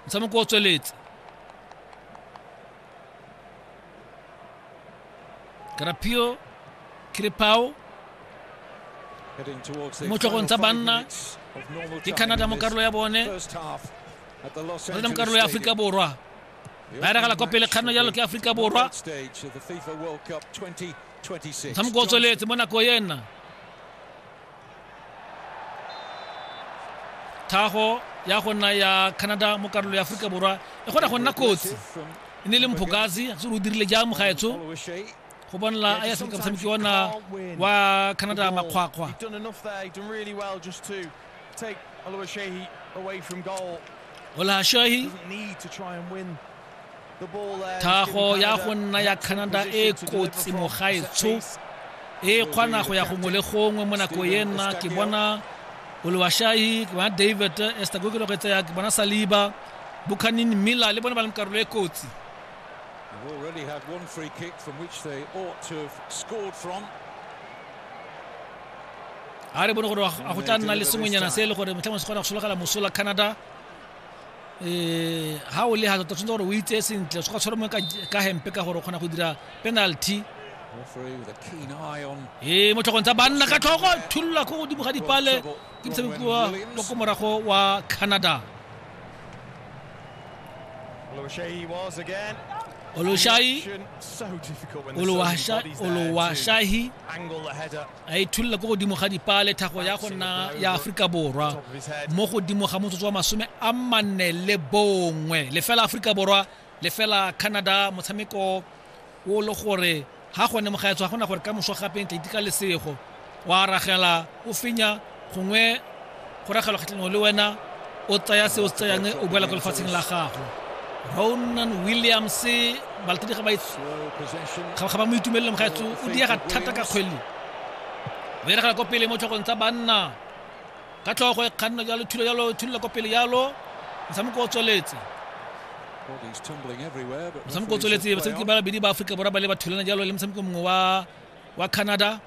motshameko o tsweletse karapio kiripao mo tlhogong tsa banna ke canada mo karolo ya bone rena mo karolo ya aforika borwa ba eragala kwa pele kganno jalo ke aforika borwa motshameko o tsweletse mo nako ena thago ya go nna ya canada mo karolo ya aforika borwa e kgona go nna kotsi e ne le mphokazi se o dirile jang mogaetsho go bonela a ya seka motshameki ona wa canada makgwakgwa olahashahi thago ya go nna ya canada e kotsi mogaetsho e kgona go ya gongwe le gongwe mo nako e nna ke bona olowashahi ke bona david estagokelo go etseya ke bona saliba buchanin miller le bone ba leng karolo e kotsi They've already had one free kick from which they ought to have scored from. a re bone gore a go tla nna le sengwenyana se e le gore motlhangwe se kgona go sologela mosola canada um ha o le ha tota tshwanetse gore o itseye sentle o se ka tshwara mo ka hempe ka gore o kgona go dira penalty ee motlhogong tsa banna ka tlhogo thulula ko godimo ga dipale ke motshameki wa ko morago wa canada Oluwaseyi Oluwaseyi a ithulela ko godimo ga dipaa le thago ya go nna ya aforika borwa mo godimo ga motsotso wa masome a manne le bongwe lefela aforika borwa lefela canada motshameko o le gore ga gone mogaetso ga gona gore ka moso gape ntla iteka lesego wa aragela o fenya gongwe kgoragalo kgatlhanong le wena o tsaya se o se tsayang o boela ko lefatsheng la gago ronan williams balatedi ga ba mo itumelele mogaetso o diega thata ka kgwele o diragala ko pele mo tlhogong tsa banna ka tlhogo e kganna jalo thulo jalo thulela ko pele jalo motshameko o tsweletse motshameko o tsweletse basebetsi ba babedi ba aforika borwa ba le ba thulana jalo le motshameko mongwe wa canada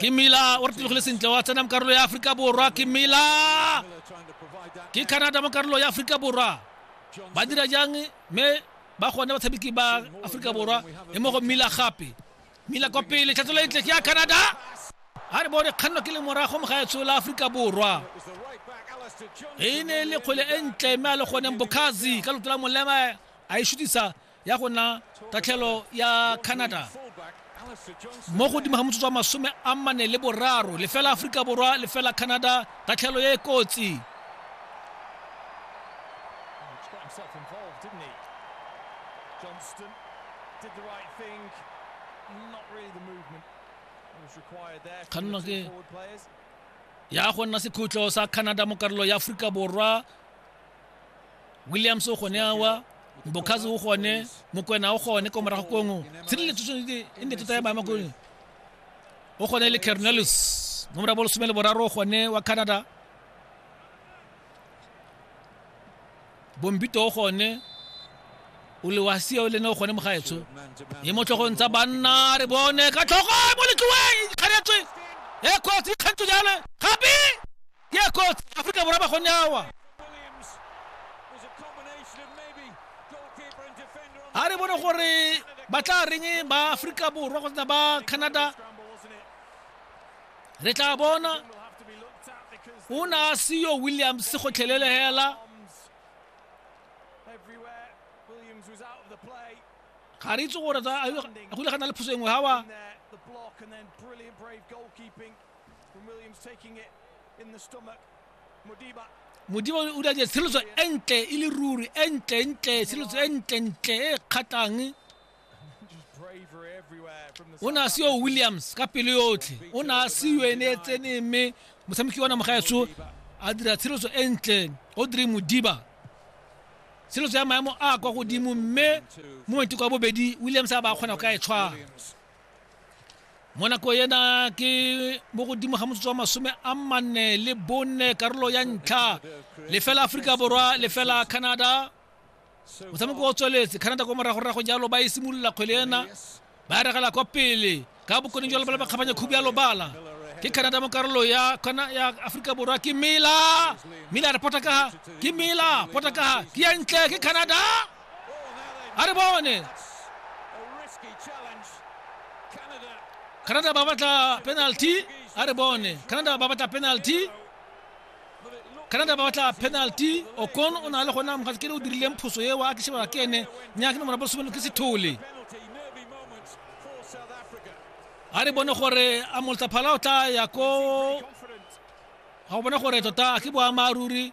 ke mila o re tlogile sentle wa tsena mo karolo ya aforika borwa ke mila ke canada mo karolo ya aforika borwa ba dira jang mme ba gone batshameki ba aforika borwa e mo go mila gape mila kwa pele tlhatsolo e ntle ke ya canada a re bone kganno ke le morago mo ga etsho la aforika borwa e ne e le kgwele e ntle mme a le goneng bokhazi ka loto la molema a e shutisa ya go nna tatlhelo ya canada mo godimo ga motsotso wa masome a mane le boraro lefela aforika borwa lefela canada tatlhelo e e kotsi Johnston did the right thing. Not really the movement that was required there. From the forward players. ya go nna sekhutlo sa canada mo karolo ya aforika borwa williams o gone awa mbokhazi o gone mokwena o gone ko morago kongwe tshireletso e ne tota ya maema kone o gone le carnelus mo morago bolesome le boraro o gone wa canada bombito o gone o le wa seo le ne o gone mogaetsho e mo tlhogong tsa banna re bone ka tlhogo mo letloeng ikganetswe e kgwetsi ikgantso jale gape ya kotsi aforika borwa ba go nyawa ga re bone gore ba tla reng ba aforika borwa kgotsa ba canada re tla bona o ne a seyo williams gotlhelele hela ga re itse gore go ile ga na le phoso engwe gawa When Williams taking it in the stomach, Modiba modimo o dira tshireletso e ntle e le ruri e ntle ntle tshireletso e ntle ntle e kgatlhang o ne a se yo williams ka pelo yotlhe o ne a se yo ene e tsene mme motshameki wa namogaetso a dira tshireletso e ntle o dire modiba tshireletso ya maemo a kwa godimo mme mo maiteko a bobedi williams a ba kgona go ka e tshwara mo nako ena ke mo godimo ga motsotso wa masome a manne le bonne karolo ya ntlha lefela aforika borwa lefela canada motshameko o tsweletse canada kwa moragorago jalo ba e simolola kgwele ena ba e regela kwa pele ka bokone jalo ba le bakgabanya khubi ya lobala ke canada mo karolo ya aforika borwa ke mela mela re potakaga ke mela potakaga ke ya ntle ke canada a re bone canada ba batla penalty a re bone canada ba batla penalty canada ba batla penalty okon o na le gona mogatse ke le o dirileng phoso eo a ke shebela ke ene nyake nomora bosomeno ke sethole a re bone gore a moltsaphala o tla ya ko ga o bone gore tota ke boamaruri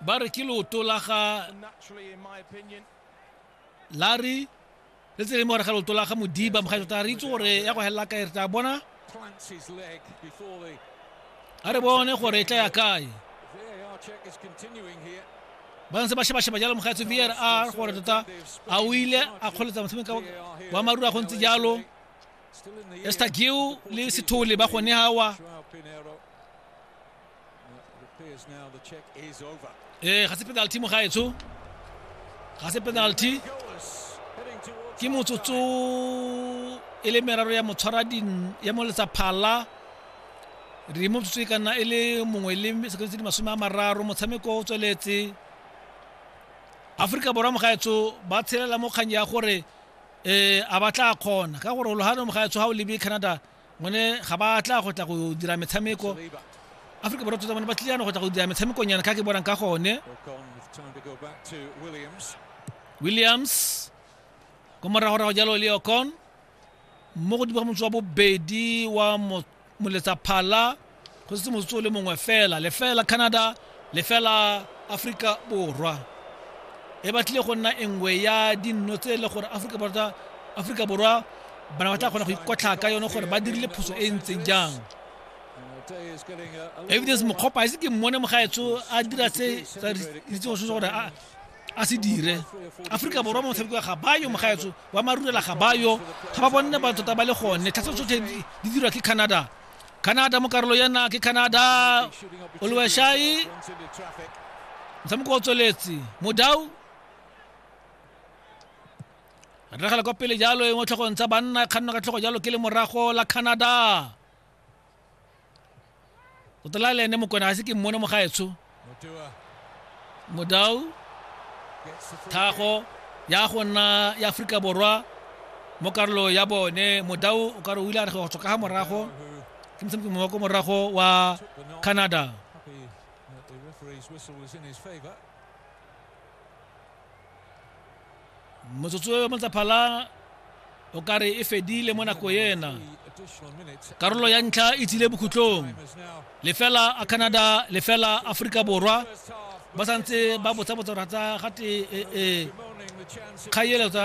ba re ke leoto la ga lari le tse leng gore ga leoto la ga modiba mogae tota re itse gore ya go helela kae re tla bona a re bone gore e tla ya kae ba ntse ba shebasheba jalo mogaetso v r r gore tota a o ile a kgoletsa motshameko wa marura go ntse jalo estagiu le sethole ba gone gawa ee ga se penalty mo gaetsho ga se penalty ke motsotso e le meraro ya motshwara ya moletsa phala re mo tsotso e ka nna e le mongwe le sekontse di masome a mararo motshameko o tsweletse aforika borwa mogaetsho ba tshelela mo kgang ya gore um a ba tla kgona ka gore ologano mogaetsho ga o lebe canada ngone ga ba tla go tla go dira metshameko aforika borwa tsotsa bone ba tlile yana go tla go dira metshamekong yana ka ke bonang ka gone williams ko moragorago jalo le ocon mo godimo ga motse wa bobedi wa mo- moletsa phala go setse motsotso o le mongwe fela lefela canada lefela aforika borwa e batlile go nna engwe ya dinno tse e le gore aforika borwa bana ba tla kgona go ikotlha ka yone gore ba dirile phoso e ntseng jang evidence mokgopa a ise ke mmone mogaetsho a dira se itsegoso se gore a se dire aforika borwa mo motshameko ga bayo mogaetsho wa marurela ga bayo ga ba bonne ba tota ba le gone tlhatsa tsotlhe di dirwa ke canada canada mo karolo ya nna ke canada oluwashai motshameko o tsweletse modau ragela kwa pele jalo e mo tlhogong tsa banna kganno ka tlhogo jalo ke le morago la canada o tla le ene mokone ga se ke mmone mo gaetsho modau thago ya go nna ya aforika borwa mo karolo ya bone modau o ka re o ile a re go tswa ka ga morago ke motshameki mongwe ko morago wa canada motsotso yo motsaphala o ka re e fedile mo nako ena karolo ya ntlha e tsile bokhutlong lefela a canada lefela aforika borwa ba santse ba botsa botsa ratsa gate e, e, kgaeletsa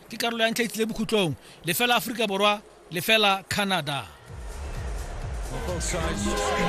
ke karolo ya ntlha e tlile bokhutlong lefela aforika borwa lefela canada